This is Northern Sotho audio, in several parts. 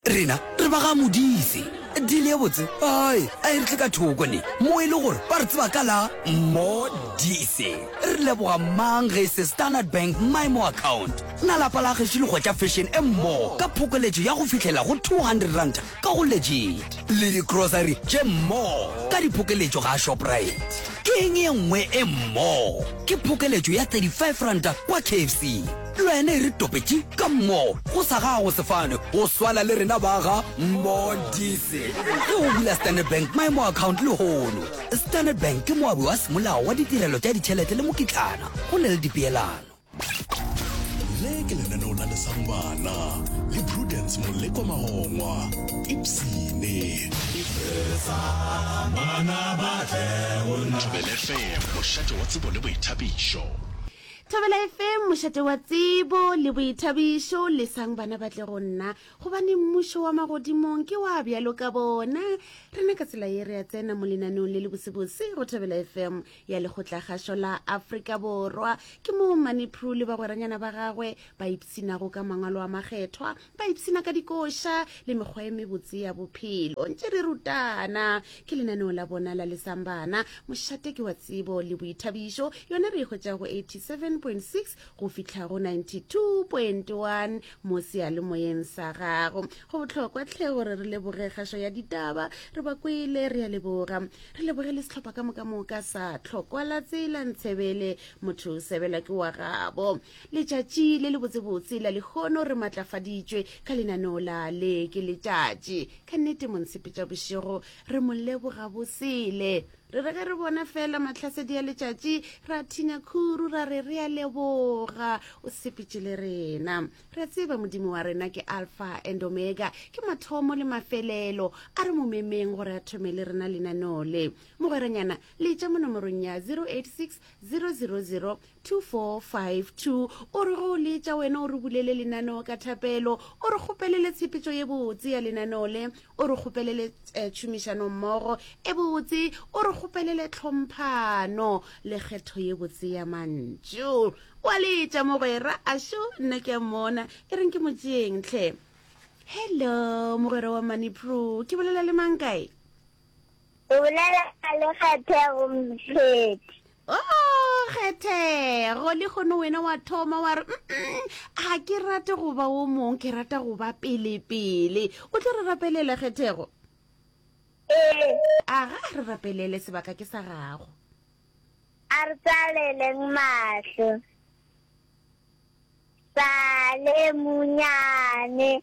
rena re ba ga modife dile ye botse ai a e re tle ka thoko ne mo e le gore ba re tseba ka la modise re leboga mang ge se standard bank mymo account na lapa la gešo le gotša fashion e mmogo ka phokoletšo ya go fitlhela go 200 ranta ka go legit le di grocery tše more ka diphokeletšo ga Shoprite. Ke eng e nngwe e more? Ke phokeletšo ya 35 ranta kwa KFC. Le wena e re topetše ka more go sa gago sefane go swala le rena ba ga Mondise. Ge o bula Standard Bank My More account lehono, Standard Bank ke moabi wa semolao wa ditirelo tša ditšhelete le mokitlana go na le dipeelano. le ke lenaneo la lesang bana le prudence moleko magongwa ipsene thobelefm mošate wa tsebo le boithabišo thobela efeng mošate wa tsebo le boithabišo lesang bana ba tle go nna gobane mmušo wa magodimong ke wa bjalo ka bona rena ka tsela ye re a tsena mo lenaneong le le bosebose go thobela efeng ya lekgotlakgašo la afrika borwa ke moo manipru le bagweranyana ba gagwe ba ipsinago ka mangwalo a makgethwa ba ipsina ka dikoša le mekgwa e mebotse ya bophelo ntše re rutana ke lenaneo la bona la lesambana mošate ke wa tsebo le boithabišo yona re e hwetša go 87.6 go fihla go 92.1 mo seyalemoyeng sa gago go bohlokwa tlhe gore re leboge kgašo ya ditaba re ba kwele re ya leboga re leboge le setlhopha ka moka moka sa tlhokwala tsela ntshebele motho sebela ke wa gabo letšatši le le botsebotse la lekgono re matlafaditšwe ka lenaneo la le ke letšatši ka nnete monsepetša bošego re mo leboga bosele Re re ge re bona fela matlhasedi a letšatši ra thinya khuru ra re re a leboga o sepetše le rena re tseba modimo wa rena ke alpha and omega ke mathomo le mafelelo a re momemeng gore a thome le rena lenaneo le mogweranyana le tša mo nomorong ya 086 000 2452 o re go o letša wena o re bulele lenaneo ka thapelo o re kgopelele tshepetšo ye botse ya lenaneo le o re kgopelele eh, tšhomišanommogo e botse o re kgopelele tlhomphano le kgetho ye botse ya mantšu o a letša mogwera ašo nna ke a mmona e reng ke motšeeng tlhe hello mogwera wa money pro ke bolela le mang kae O bolela le kgethego mpheti. O kgethego le kgono wena wa thoma wa re ga ke rate go ba o mong ke rata go ba pelepele o tlo re rapelela kgethego ee a ga re rapelele sebaka ke sa gago a re tsaleleng mahlo sale munyane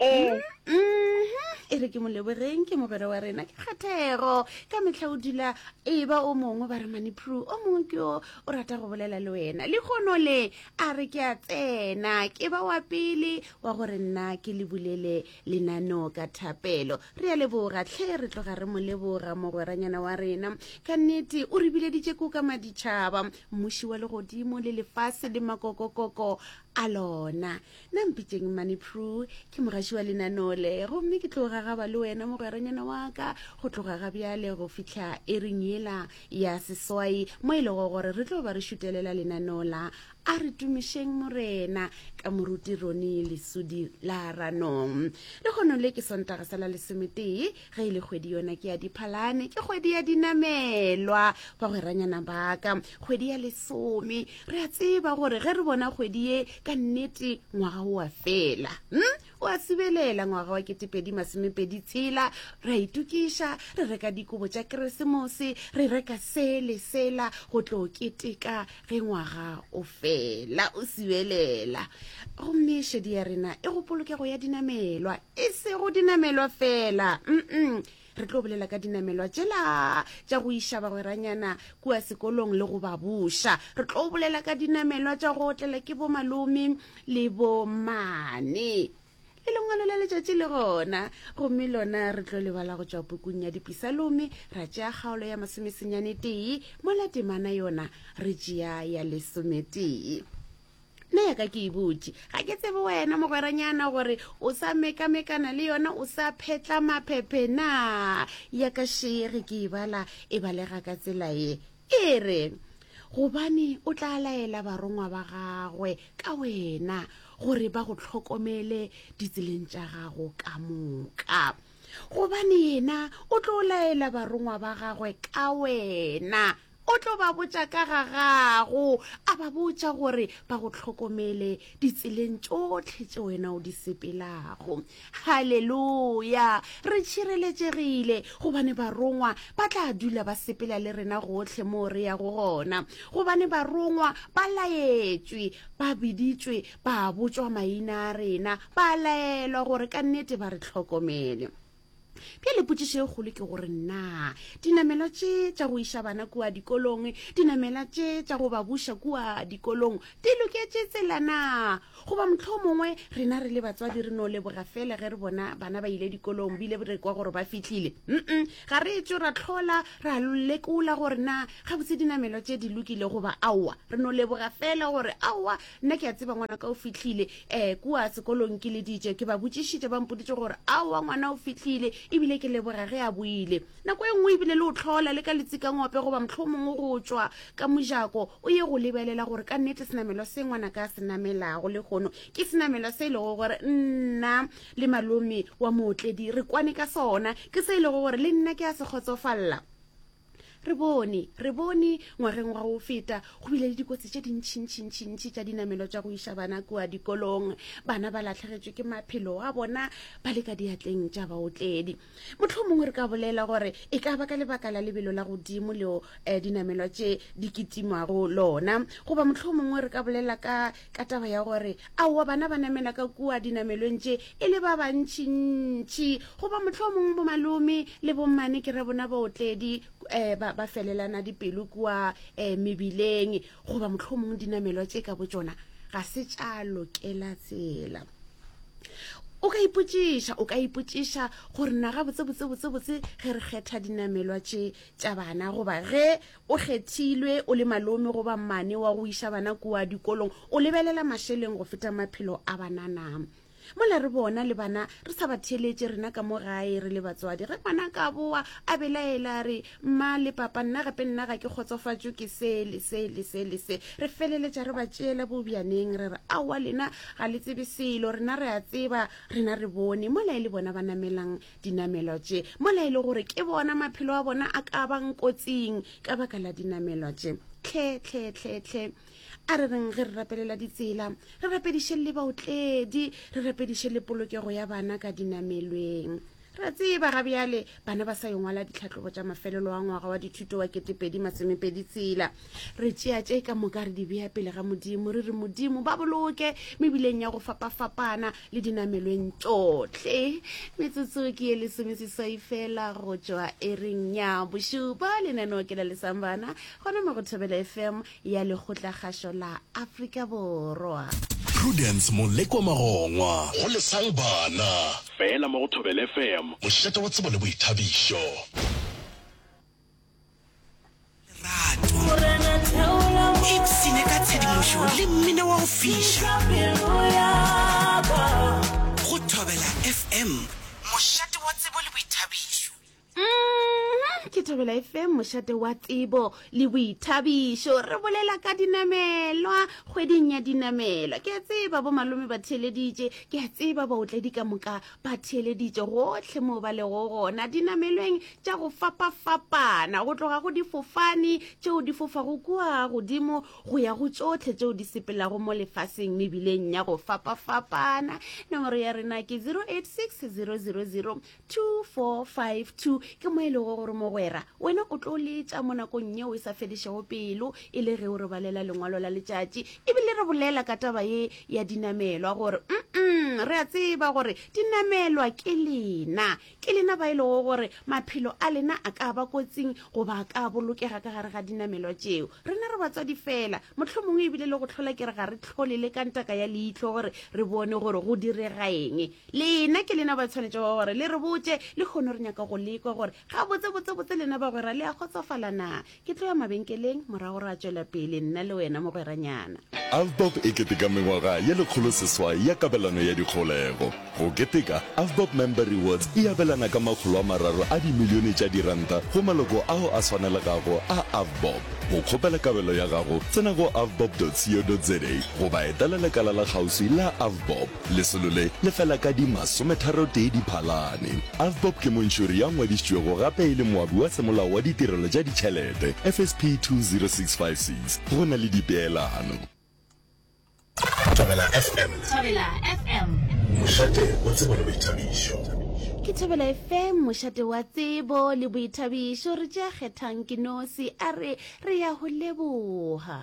ee e re ke molebogeng ke mogwera wa rena ke kgathego ka metlha o dula e ba o mongwe ba re manipru o mongwe ke yo o rata go bolela le wena le kgono le a re ke a tsena ke ba wa pele wa gore nna ke le bulele lenaneo ka thapelo re ya leboga tlhe re tloga re mo leboga mogweranyana wa rena ka nnete o re bileditše ko ka maditšhaba mmuši wa legodimo le lefase le makokokoko a lona Na mpitšeng mmane Prue, ke mogaši wa lenaneo le, gomme ke tlo gagaba le wena mogweranyana wa ka go tloga ga bjale go fihla ering yela ya seswai mo e lego gore re tlo ba re šutelela lenaneo la A re tumišeng Morena ka moruti Ronnie Lesudi la Ranong. Lekgono le ke Sontaga sa la lesometee. ge e le kgwedi yona ke ya diphalane ke kgwedi ya dinamelwa ba gweranyana baka kgwedi ya lesome re a tseba gore ge re bona kgwedi ye ka nnete ngwaga o a fela hmm? o a sibelela ngwaga wa ketepedi masomepedi tshela re a itokiša re reka dikobo tša keresemose re reka se le sela go tlo keteka ge ngwaga o fela o sibelela gomme šedi ya rena e go polokego ya dinamelwa e sego dinamelwa fela mm re tlo bolela ka dinamelwa tšela tša go iša bagweranyana kua sekolong le go ba buša re tlo bolela ka dinamelwa tša go otlela ke bomalome le bomane le lengwalo la letšatši le gona gomme lona re tlo lebala go tšwa pukung ya dipisalome ra tšea kgaolo ya masomesenyane tee mola temana yona re tšea ya lesometee nna ya ka ke e botse ga ke tsebe wena mogweranyana gore o sa mekamekana le yona o sa phetla maphephe na ya ka shege ke e bala e balega ka tsela ye e re gobane o tla laela barongwa ba gagwe ka wena gore ba go tlhokomele ditseleng tša gago ka moka gobane yena o tlo laela barongwa ba gagwe ka wena O tlo ba botša ka ga gago, a ba botša gore ba go hlokomele ditseleng tšohle tše wena o di sepelago. Haleluya! Re tšhireletšegile gobane barongwa ba tla dula ba sepela le rena gohle moo re yago gona, gobane barongwa ba laetšwe, ba biditšwe, ba botšwa maina a rena, ba laelwa gore ka nnete ba re hlokomele. Bjale potšišo e kgolo ke gore na dinamelwa tše tša go iša bana kua dikolong, dinamela tše tša go ba buša kua dikolong di loketše tsela na? Goba mohlho mongwe rena re le batswadi re no leboga fela ge re bona bana ba ile dikolong bile re kwa gore ba fihlile? Mm-mm, ga re etšo ra tlhola ra lekola gore na gabotse dinamelwa tše di lokile goba aowa. Re no leboga fela gore aowa nna ke a tseba ngwana ka o fitlhile um kua sekolong ke leditše ke ba botšišitše ba mpoditše gore a wa ngwana o fitlhile ebile ke leboga ge a boile nako e nngwe ebile le o tlhola le ka letsikangope goba motlho mongwe go tšwa ka mojako o ye go lebelela gore ka nnete senamelo se ngwana ka se namelago le kgono ke senamelo se e lego gore nna le malome wa mootledi re kwane ka sona ke se e lego gore le nna ke a se kgotsofalela re bone re bone ngwageng wa go feta go bile le dikotsi tše dintšhintšhintšhintši tša dinamelo tša go iša bana kua dikolong bana ba latlhegetswe ke maphelo wa bona ba le ka diatleng tša baotledi motlho mongwe re ka bolela gore e ka ba ka lebaka la lebelo la godimo leo um eh, dinamelwa tše di kitimwago lona goba motlho mongwe re ka bolela ka ka taba ya gore aowa bana ba namela ka kua dinamelong tše e le ba bantšintši goba motlho o mongwe bomalome le bommane ke re bona baotledi um ba felelana dipelo kua um mebileng goba motlho o mongwe dinamelwa tše ka bo tsona ga se tša lokela tsela o ka ipotšiša o ka ipotšiša gore na ga botsebotsebotsebotse ge re kgetha dinamelwa tše tša bana goba ge O kgethilwe, o le malome goba mmane wa go iša bana kua dikolong, o lebelela mašeleng go feta maphelo a banana. Mola re bona le bana re sa ba theeletše rena ka mo gae re le batswadi. Ge ngwana ka boa a belaela a re, Mma le Papa, nna gape nna ga ke kgotsofatšwe ke se le se le se le se, re feleletša re ba tšeela bobjaneng re re, Aowa lena ga le tsebe selo, rena re a tseba, rena re bone. Mola e le bona ba namelang dinamelwa tše mola e le gore ke bona maphelo a bona a ka bang kotsing ka baka la dinamelwa tše tlhe tlhe tlhe tlhe a re reng ge re rapelela ditsela re rapediše le baotledi re rapediše le polokego ya bana ka dinamelweng re tseba ga bjale bana ba sa yongwala ditlhatlobo tša mafelelo a ngwaga wa dithuto wa ketepedi masomepedi tshela re tšea tše ka moka re di bea pele ga modimo re re modimo ba boloke mebileng ya go fapafapana le dinamelweng tšohle metsotso ke ye lesomeseswai fela go tšwa ereng ya bošupa lenaneo ke la lesambana gona mo go thobela fm ya lekgotlakgašo la afrika borwa prudence moleko magongwa go lesang bana fela mo go thobela fm mošate wa tsebo le boithabišo mošate wa tsebo le boithabišo re bolela ka dinamelwa kgweding ya dinamelwa ke a tseba bo malome ba theeleditše ke a tseba baotledi ka moka ba theeleditše gohle moo ba lego gona dinamelweng tša go fapafapana go tloga go difofane tšeo di fofago kua godimo go ya go tšohle tšeo di sepelago mo lefaseng mebileng ya go fapafapana nomoro ya rena ke 086 000 2452 ke mo e lego gore mogwera wena o tlo letša mo nakong yeo e sa fedišego pelo e le ge o re balela lengwalo la letšatši ebile re bolela ka taba ye ya dinamelwa gore mm re a tseba gore dinamelwa ke lena ke lena ba e lego gore maphelo a lena a ka ba kotsing goba a ka bolokega ka gare ga dinamelwa tšeo rena re batswadi fela motlho mongwe ebile le go tlhola ke re ga re tlhole le ka ntaka ya leitlho gore re bone gore go direga eng lena ke lena ba tshwanetse go gore le re botse le kgono re nyaka go lekwa gore ga botse botse botse lena ba gwera le a kgotsofala na Ke tlo ya mabenkeleng, morago ra tšwela pele nna le wena, mogweranyana. Avbob e keteka mengwaga ye lekgoloseswai ya kabelano ya dikgaolego. Go keteka, Avbob Member Rewards e abelana ka makgolo a mararo a dimilione tša diranta go maloko ao a swanelegago a Avbob. Go kgopela kabelo ya gago, tsena go avbob.co.za goba etela lekala la kgauswi la Avbob. Lesolo le le fela ka di masometharotee Diphalane. Avbob ke montšhori ya ngwadišitšwego gape e le moabi wa Semolao wa Ditirelo tša Ditšhelete, FSP 20656, go na le dipeelano. Thobela FM. Thobela FM. Mošate wa tsebo le boithabišo. Ke Thobela FM, mošate wa tsebo le boithabišo. Re tšea kgethang ke nosi a re re ya go leboga.